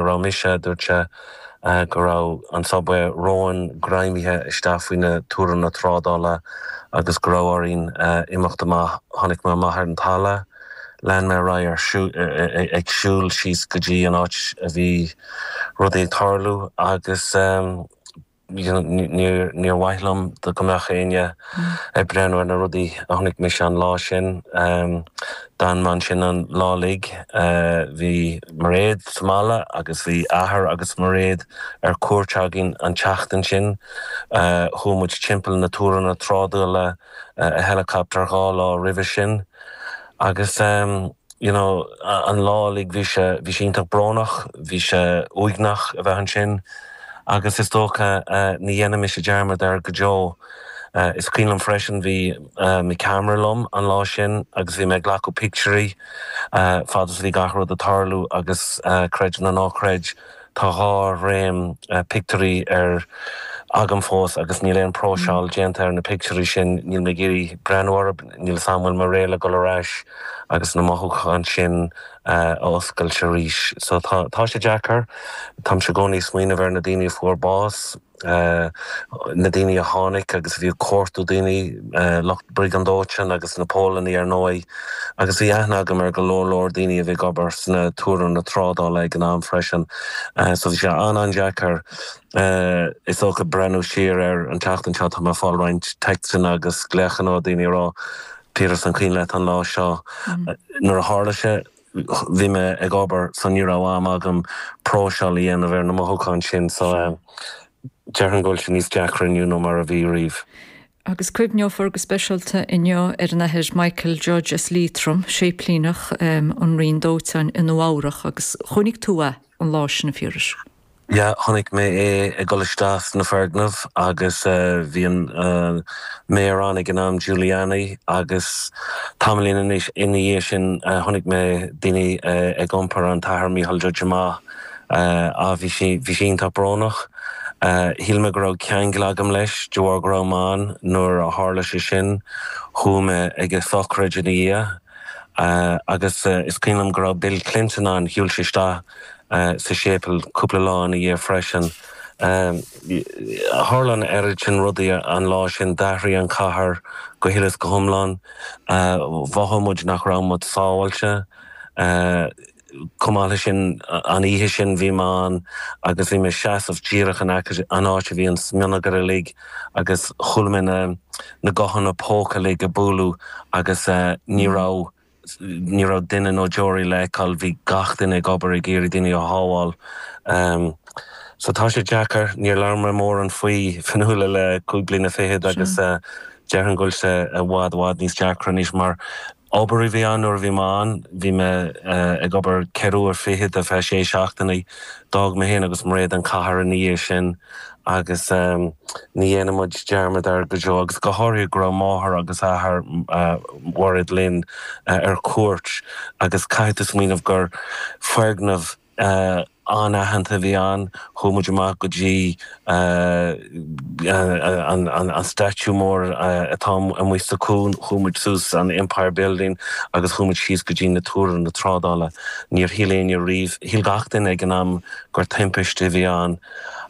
a raibh mise, a dúirt sé, go raibh an subway romhainn greimthe isteach faoi na túranna trádála agus go raibh orainn imeacht amach. Tháinig mé amach ar an talamh. Lean mé ar aghaidh ag siúl síos go dtí an áit a bhí rudaí ag tarlú agus. Níor mhaith liom go mbeadh éinne ag breathnú ar na rudaí a chonaic mise an lá sin. D'fhan mé ansin an lá uilig. Bhí Mairéad sa mbaile agus bhí athair agus máthair Mhairéad ar cuairt againn an tseachtain sin. Chuaigh muid timpeall na túranna trádála i helicopter dhá lá roimhe sin agus. you know an lá uilig bhí sé, bhí sé iontach brónach, bhí sé uaigneach a bheith ansin agus is dócha ní dhéanfaidh mise dearmad air go deo. Is cuimhin liom freisin bhí mo cheamara liom an lá sin agus bhí mé ag glacadh pictiúirí fad is a bhí gach rud ag tarlú agus creid nó ná creid, Tá dhá reel pictiúirí agam fós agus níl aon próiseáil déanta ar na pictiúirí sin. Níl mé ag iarraidh breathnú orthu, níl fhios agam an bhfuil mé réidh le ag dul ar ais agus na mothúcháin sin a oscailt arís. So tá, tá sé deacair. Táimse i gcónaí ag smaoineamh ar na daoine a fuair bás. na daoine a tháinig agus a bhí ag cuartú daoine, lucht briogáid dóiteáin agus na Póilíní ar ndóigh, agus bhí aithne agam ar go leor leor daoine a bhí ag obair sna túranna trádála ag an am freisin. So bhí sé an-an-deacair, is dócha, breathnú siar ar an tseachtain seo. Tá mé ag fáil roinnt téacsanna agus glaochanna ó daoine a rá, Peter is an cuimhin leat an lá seo. Nuair a tharla sé, bhí mé ag obair so ní raibh am agam próiseáil a dhéanamh ar na mothúcháin sin so déarfainn go bhfuil sé níos deacra inniu nó mar a bhí riamh. Agus cuimhneofar go speisialta inniu ar an Athair Michael Judge as Liatroim, séiplíneach an Roinn Dóiteáin i Nua Eabhrach agus chonaic tú é an lá sin a Phiarais. Ya, chonaic mé é ag dul isteach sna foirgnimh agus bhí an Mayor ann ag an am, Giuliani, agus tamaillín ina dhiaidh sin chonaic mé daoine ag iompar an tAthair Michael Judge amach, á bhí sé, bhí sé iontach brónach. Shíl mé go raibh ceangal agam leis de bharr go raibh mé ann nuair a tharla sé sin, chuaigh mé ag a shochraid ina dhiaidh agus is cuimhin liom go raibh Bill Clinton ann, shiúil sé isteach, sa séipeal cúpla lá ina dhiaidh freisin. Tharla an oiread sin rudaí an lá sin, d'athraigh an chathair go huile is go hiomlán. Mhothaigh muid nach raibh muid sábháilte. Chomh maith leis sin, an oíche sin bhí mé ann agus bhí mé ag seasamh díreach in aice an áit a bhí an smionagar uilig agus chuala mé na gutháin póca uilig ag bualadh agus ní raibh Ní raibh duine ná deoraí le feiceáil, bhí gach duine ag obair ag iarraidh daoine a shábháil. So tá sé deacair, níor labhair mé mórán faoi Fionnuala le cúig bliana fichead agus déarfainn go bhfuil sé i bhfad i bhfad níos deacra anois mar obair a bhí ann nuair a bhí mé ann, bhí mé ag obair ceithre uair fichead ar feadh sé seachtainí. D'fhág mé féin agus Mairéad an cathair ina dhiaidh sin. agus ní dhéanann muid dearmad air go deo, agus go háirithe go raibh máthair agus athair Mhairéad linn ar cuairt agus caithfidh tú smaoineamh gur foirgneamh an-aitheanta a bhí ann, chuaigh muid amach go dtí an statue mór atá amuigh sa chuan, chuaigh muid suas an Empire Building agus chuaigh muid síos go dtí na túranna trádála, níor shíl éinne riamh, shíl gach duine ag an am gur timpiste a bhí ann.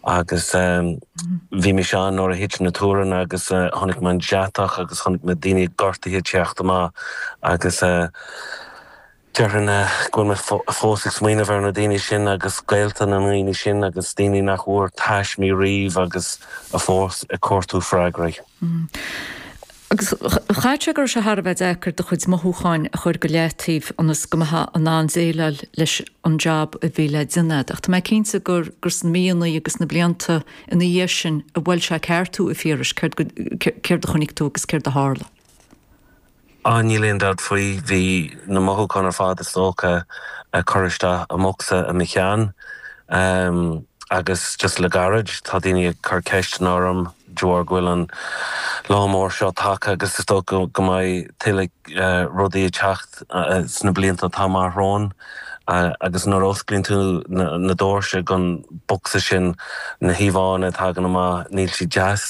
Agus bhí mise ann nuair a thit na túranna agus chonaic mé an deatach agus chonaic mé daoine gortaithe ag teacht amach agus déarfainn go bhfuil mé fós ag smaoineamh ar na daoine sin agus gaolta na ndaoine sin agus daoine nach bhfuair taismí riamh agus atá fós ag cuartú freagraí. Agus caithfidh go raibh sé thar a bheith deacair do chuid mothúcháin a chur go leataobh ionas go mbeifeá in ann déileáil leis an jab a bhí le déanamh. Ach tá mé cinnte gur sna míonna agus sna blianta ina dhiaidh sin a bhuail sé i gceart thú, a Phiarais, céard a chonaic tú agus céard a tharla? Á, níl aon dabht faoi, bhí na mothúcháin ar fad, is dócha, curtha isteach i mbocsa i mo cheann. Agus just le gairid, tá daoine ag cur ceisteanna orm. de bharr go bhfuil an lá mór seo tagtha agus is dócha go mbeidh tuilleadh rudaí ag teacht sna blianta atá amach romhainn agus nuair a osclaíonn tú na doirse den bhocsa sin na híomhánna a thagann amach níl siad deas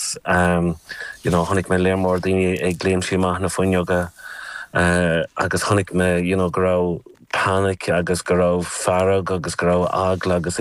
you know chonaic mé lear mór daoine ag léimtí amach na fuinneoga agus chonaic mé you know go raibh panic agus go raibh fearg agus go raibh eagla agus